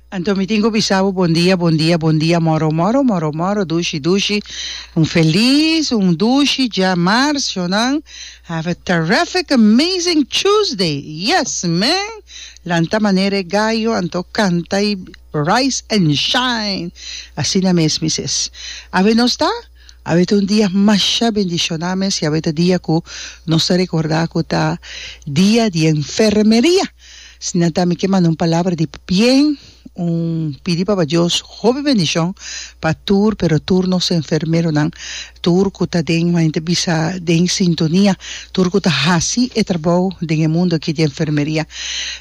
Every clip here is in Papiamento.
Anto mi tin cu bisa bo bon dia, bon dia, bon dia, moro, moro, moro, moro, dushi, dushi, un feliz, un dushi dja marzo nan, have a terrific, amazing Tuesday, yes man, lanta manera e gallo anto canta y rise and shine, asina mes mi ses, awe nos ta, awe ta un dia masha bendiciona mes y awe ta dia cu nos ta recorda cu ta dia di enfermeria. Si nan ta mi ke manda un palabra di bien, un pidi Papa Dios hopi bendicion pa tur, pero tur nos enfermeronan, tur cu ta den, como a hende bisa, den sintonia, tur cu ta haci e trabou den e mundo aki di enfermeria.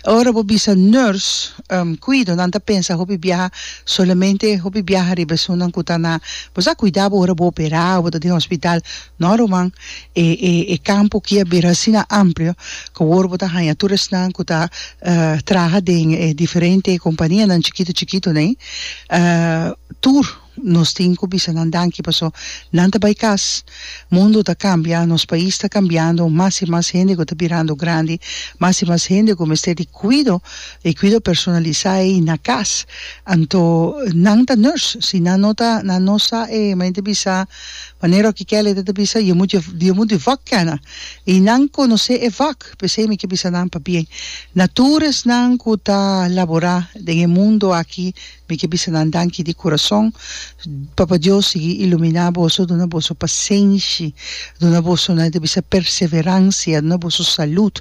Ora bo bisa nurse, cuido, nan ta pensa hopi biaha, solamente hopi biaha riba esunnan cu ta na, bo sa cuida bo ora bo opera o bo ta den hospital, No ruman, e e e kampo aki a bira asina amplio ku awor bo ta haña tur esnan ku ta traha den e diferente kompanianan chikitu chikitu nei, tur nos tin ku bisa nan danki paso nan ta bai kas, mundo ta kambia, nos pais ta kambiando, mas i mas hende ku ta birando grandi, mas i mas hende ku mester di kuido, e kuido personalisá ei na kas, anto nan ta nurse, si nan no ta nan no sa e men ta bisa. Manera oki Kelly ta ta bisa, Yo mut yo mut di vak kena, i nan konosé e vak, p'esei mi ke bisa nan pa bien. Na tur esnan ku ta laborá den e mundu aki, mi ke bisa nan danki di kurason. Papa Dios sigui iluminá boso, duna boso pasenshi, duna boso, nan e ta bisa, perseveransia, duna boso salud,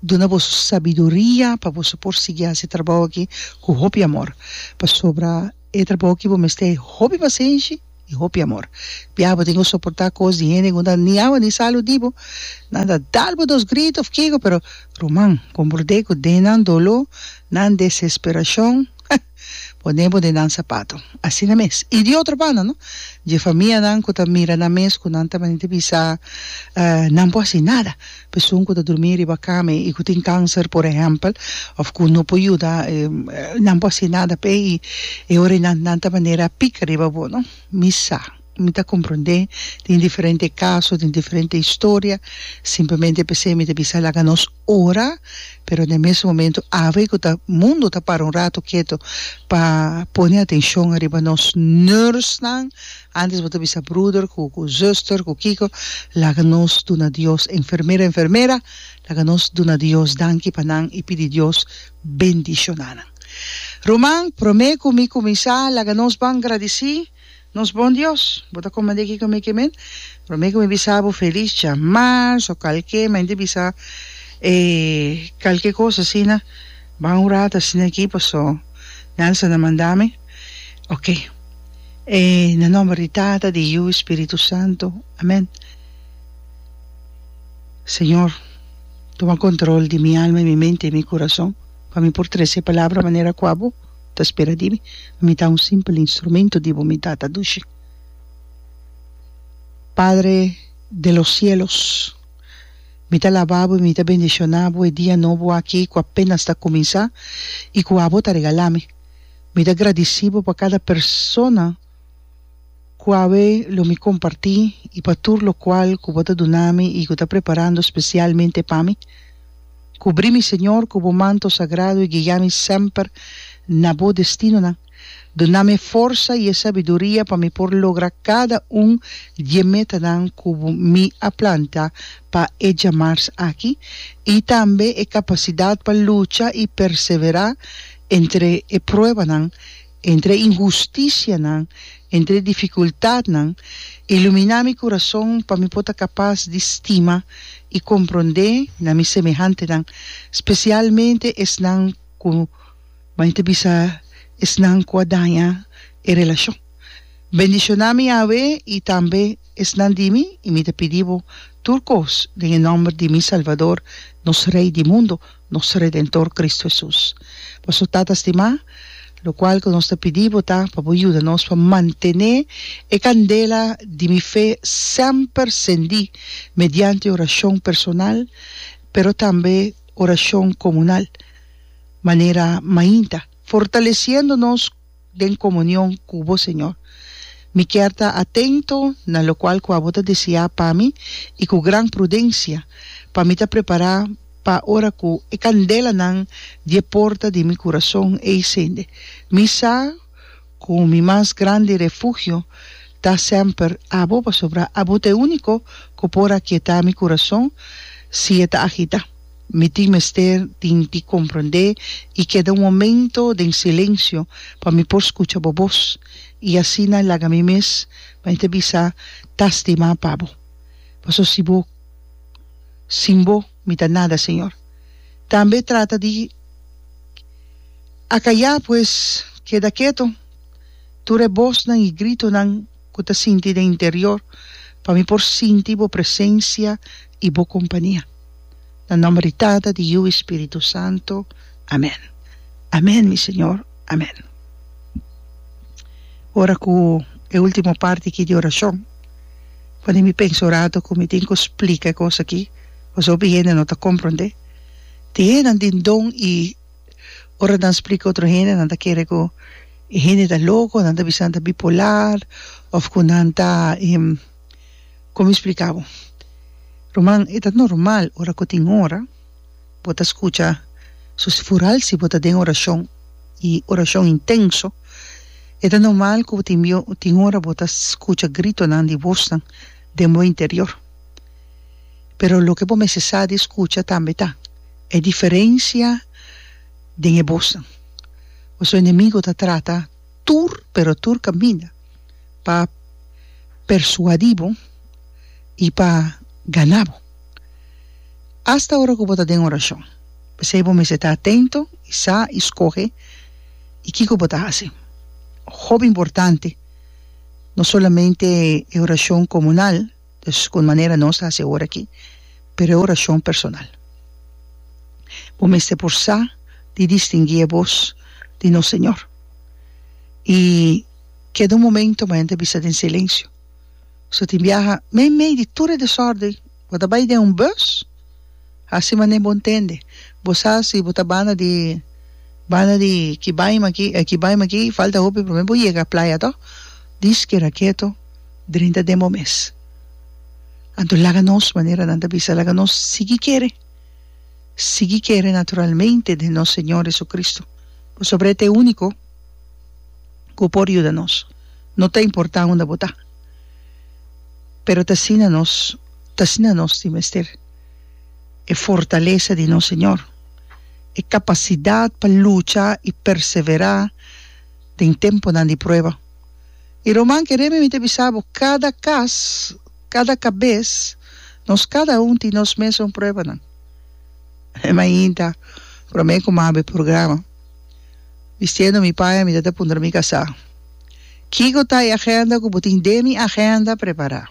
duna boso sabiduria pa boso por sigui hasi e trabou aki ku hopi amor, pasobra e trabou aki bo mester hopi pasenshi. I hopi amor. Bia bo tin ku soportá kos di hende ku no ta niña bo ni sa lo di bo. Nan ta dal bo dos grito òf kiko, pero ruman, kon por dei ku den nan doló, nan desesperashon, heh, pone bo den nan sapato. Asina mes. I di otro banda, no? Dje famianan ku ta mira nan mes ku nan ta mane di bisa, Nan por hasi nada. Pesoan ku ta durmí riba kama i ku tin kanser por ehèmpel òf ku no por yuda nan por hasi nada p'e i e ora i nan ta manera pika riba bo no mi sa mi ta komprondé tin diferente kaso tin diferente historia simplemente p'esei mi ta bisa laga nos ora pero na e mes momento awe ku ta mundu ta para un ratu ketu pa pone atenshon ariba nos nursenan. Antes bo ta bisa bruder cu cu zuster cu kico, laga nos duna Dios, enfermera enfermera, laga nos duna Dios danki pa nan y pidi Dios bendiciona nan. Ruman, prome cu mi cuminsa, laga nos ban gradici nos bon Dios. Bo ta comprende kico mi ke men? Prome cu mi bisa bo feliz djamas o calke mente bisa e calke cos asina, ban ora ta asina aki paso Nelson a manda mi. Ok. E na nomber di Tata, di Yu, i Spiritu Santu. Amen. Señor, tuma control di mi alma, mi mente, mi curason, pa mi por trece e palabra manera cua bo ta spera di mi. Mi ta un simpel instrumento di bo, mi Tata dushi. Padre di los cielos, mi ta laba bo, mi ta bendiciona bo e dia nobo aki cu apenas ta cuminsa, i cu abo ta regala mi. Mi ta gradisí bo pa kada persona ku awe lo mi kompartí i pa tur lokual ku bo ta duna mi i ku ta preparando spesialmente pa mi. Kubrí mi, Señor, ku bo manto sagrado i guia mi semper na bo destinonan. Duna mi e forsa i e sabiduria pa mi por logra kada un di e metanan ku mi a planta pa e djamars aki i tambe e kapasidat pa lucha i perseverá Entre e pruebanan, entre e inhusticianan, entre e dificultadnan, ilumina mi curazon pa mi por ta capaz di stima y compronde na mi semehantenan, specialmente esnan cu, m'a ta bisa, esnan cu a daña e relacion. Bendiciona mi, Yahwe, y tambe esnan di mi, y mi ta pidi Bo tur cos den e nomber di mi Salvador, nos Rey di mundo. nos Redentor Cristo Hesus. Paso, Tata stimá, lo cual cu nos ta pidi bo ta pa bo yuda nos pa mantené e candela di mi fe semper cendí mediante oracion personal, pero tambe oracion comunal, manera mainta, fortaleciendo nos, den comunion cu bo, Señor. Mi kier ta atento na locual cu abo ta deseá pa mi i cu gran prudencia pa mi ta prepará pa ora cu e candelanan di e porta di mi curazon ei sende. Mi sa cu mi mas grandi refugio ta semper abo, pasobra abo ta e único cu por akietá mi curazon si e ta agitá. Mi tin mester tin di komprondé i keda un momento den silensio pa mi por skucha bo bos i asina laga mi mes pa mi ta bisa ta stima pa bo. Paso si bo sin bo mi ta nada, Señor. Tambe trata di akayá pues keda keto tur e bosnan i gritonan. ku ta sinti den interior, pa mi por sinti bo presensia i bo kompania. Na nòmber di Tata, di Yu i Spiritu Santu. Amèn. Amèn, mi Señor. Amèn. Ora ku e último parti aki di orashon, pone mi pensa un ratu ku mi tin ku splika e kos aki, pasobra mi hende no ta komprondé. Tin hendenan den don i. Ora nan splika otro hende nan ta kere ku e hende ta loko, nan ta bisa nan ta bipolar òf ku nan ta kon mi spliká bo? Ruman, e ta normal ora ku tin ora bo ta skucha sus fural si bo ta den orashon i orashon intenso, e ta normal ku tin tin ora bo ta skucha gritonan di bosnan den bo interior. pero loke bo mester sa di skucha tambe ta e diferensia den e bosnan. Ku su enemigo ta trata tur pero tur kaminda pa persuadí bo i pa ganá bo, asta ora ku bo ta den orashon. P'esei bo mester ta atento i sa i skohe i kiko bo ta hasi. Hopi importante, no solamente e orashon komunal. Dus con manera nos ta haci awor aki, preoracion personal. Bo mester por sa di distingui e voz di nos Señor. Y keda un momento maya ta bisa den silencio. So tin biaha mei mei di tur e desorden, bo ta bay den un bus, haci manera bo ntende, bo sa si bo ta banda di banda di kibaima aki, kibaima aki, falta hopi proble bo yega playa to, diskera keto. Drinta demo mes. Anto laga nos, manera nan ta bisa, laga nos sigui kere, sigui kere naturalmente den nos Señor Jesucristo, pasobra e ta e unico cu por yuda nos, no ta importa unda bo ta, pero ta asina nos, ta asina nos tin mester e fortalesa di nos Señor, e capacidad pa lucha y persevera den temponan di prueba. I ruman, ke reme mi ta bisa bo, kada kas, kada kabes, nos kada un tin nos mes un pruebanan. E mainta, promé ku maba e programa, bistiendo mi paña mi ta ta puntra mi kasá, Kiko ta e agenda ku bo tin den mi agenda prepará?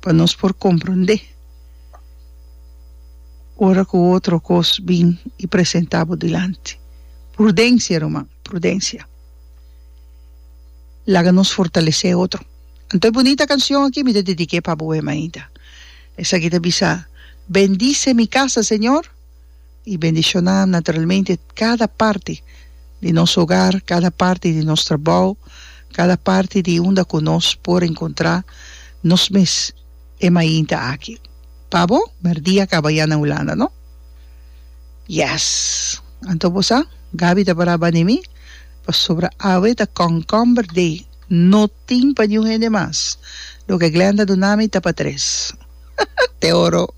pa nos por komprondé ora ku otro kos bin i presentá bo dilanti. Prudensia, ruman, prudensia. Laga nos fortalesé otro. Anto e bunita kanshon akí mi ta dedik'é pa bo awor mainta. Esaki ta bisa, Bendice mi casa, Señor. i bendishoná naturalmente kada parti di nos hogar, kada parti di nos trabou, kada parti di unda ku nos por enkontrá nos mes e mainta aki. Pa bo, merdí a kaba ya na Hulanda, no? Yes! Anto bo sa, Gabi ta pará bani mi, pasobra awe ta Concomber Day, no tin pa niun hende mas. Loke Glenda duna mi ta pa tres. Te oro!